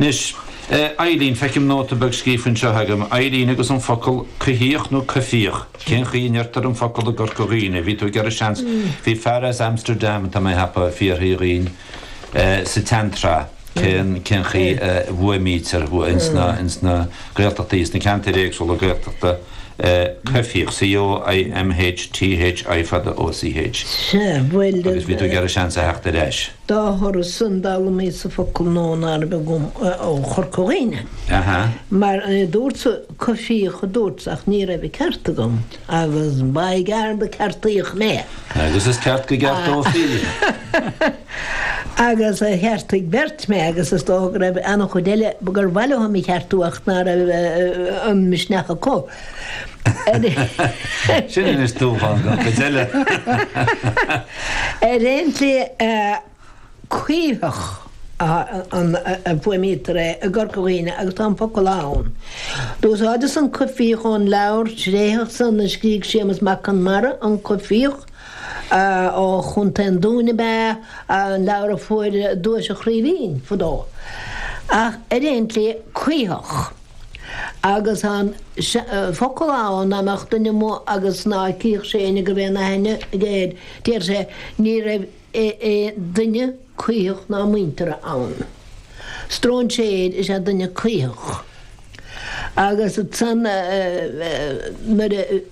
Anois, eh, Eileen, feicim nóta beag scríofa anseo agam, Eileen agus an focal coimhthíoch nó coimhthíoch, cén chaoi a ndeirtear an focal i gCorca Dhuibhne? Bhí tú ag iarraidh seans, bhí fear as Amsterdam, atá mé ag ceapadh, fíorthaobh dhínn, eh, sa tseantreath, cén, cén chaoi a bhfuaimnítear ins na, ins na Gaeltachtaí, ins na ceantair éagsúla Gaeltachta, eh, coimhthíoch, C-o-i-m-h-t-h-i fada O-c-h, Sea, bhuel, eh. agus bhí tú ag iarraidh seans a theacht ar ais. Dá thoradh san, d'fhoghlaimíos-sa focal nua ná raibh agam ó Chorca Dhuibhne. Mar a dúrtsa coimhthíoch a dúrt ach ní raibh an ceart agam agus ba ghearr gur ceartaíodh mé. Agus is ceart go gceartófaí. Agus cheartaigh beirt mé agus is dócha go raibh an-chuid eile gur mhaith leo mé a cheartú ach ná raibh an misneach acu. Sin anois dúshlán don chuid eile! Ar aon tslí, caoitheach a fuaimnítear é i gCorca Dhuibhne agus tá an focal ann. D'úsáideas an coimhthíoch ón leabhar tréitheach san a scrígh Séamus Mac Conmara, An Coimhthíoch, ó Chontae an Dúin ab ea é, an leabhar a fuair Duais an Chraoibhín fadó. Ach ar aon tslí, caoitheach. Agus tá an focal ann, dá mbeadh duine amuigh agus ná cífeadh sé éinne go mbeadh aon aithne aige air, déarfadh sé, ní raibh aon duine caoitheach ná muinteartha ann. Stróinséir is ea duine caoitheach. Agus san, nuair a.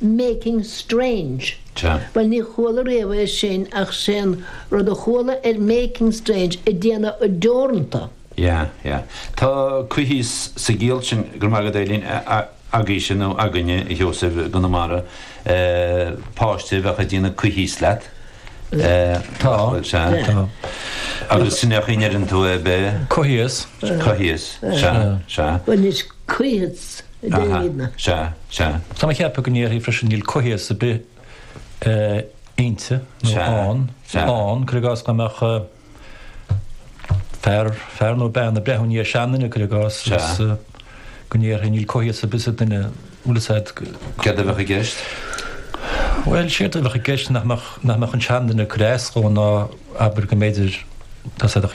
Making strange. Sea. Bhuel, ní chuala riamh é sin ach sé'n rud a chuala ar Making strange, ag déanamh deoranta. Yeah, yeah. Tá coimhthíos sa gciall sin, go raibh maith agat Eileen, agaibhse nó againne a Sheosaimh i gConamara, páiste a bheadh ag déanamh coimhthíos leat. Tá, tá. Agus sin é an chaoi a ndeireann tú é, b'ea? Coimhthíos. Coimhthíos. Sea, sea. Bhuel, anois, coimhthíos. Déan. Sea, sea. Tá mé ag ceapadh go ndéarfaí freisin níl coimhthíos ar bith inti nó ann, ann, cur i gcás, dá mbeadh fear, fear nó bean ag breathnú i ndiaidh seanduine, cur i gcás, agus go ndéarfaí níl coimhthíos ar bith sa duine, an bhfuil fhios a'd? Céard a bheadh i gceist? Bhuel, séard a bheadh i gceist nach mbeadh, nach mbeadh an seanduine ag cur as dhó ná abair go mb'fhéidir, tá siad ag